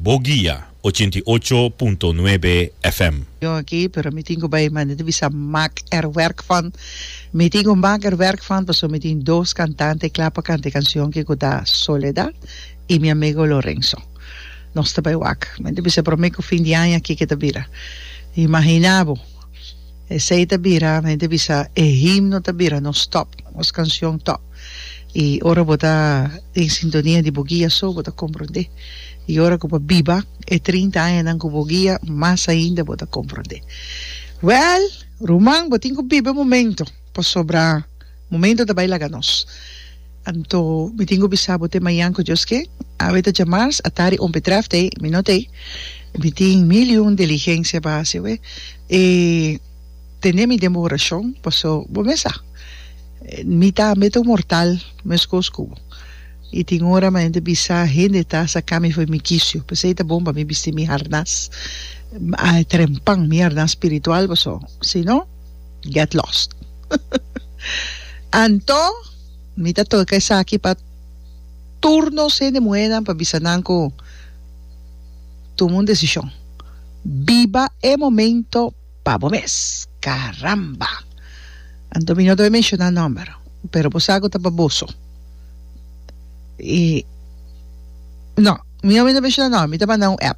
Bo guia ochenta i ocho punto nuebe FM. Yon aki, pero mi tin ku bai manda di bisa mak er werk van. Mi tin ku mak er werk van paso mi tin dos kantante kla pa kanta e kansion ki ku ta Soledad i mi amigo Lorenzo. Nos ta bai wak. Mi ta bisa promé ku fin di aña kiko ta bira. Imagina bo! Esei ta bira, mi ta bisa, e himno ta bira nos top, nos canción top. Y ora bo ta den sintonia di bo guia so, bo ta comprende. Y ora cu bo a biba e trinta añanan cu bo guia, mas ainda bo ta comprende. Well, ruman, bo tin cu biba e momento. Pasobra momento ta bai laga nos. Anto mi tin ku bisa bo te mañan ku Dios ke awe ta dja mars, a tari ompe trèf tei, mi no tei. Mi tin mil i un diligensia pa hasi awe. E tene mi den bo orashon, paso bo mes sa, mi tambe ta un mortal meskos ku bo. I tin ora mi ta bisa hende ta saka mi for mi kisio, p'esei ta bon pa mi bisti mi harnas, a trempan mi harnas spiritual, paso si no, get lost. Anto mi ta toca esaki pa tur nos hende muhernan pa bisa nan cu tuma un decision, biba e momento pa bo mes, caramba! Anto mi no ta menciona nomber pero bo sa cu ta pa boso y no mi no a menciona nomber mi ta manda un app.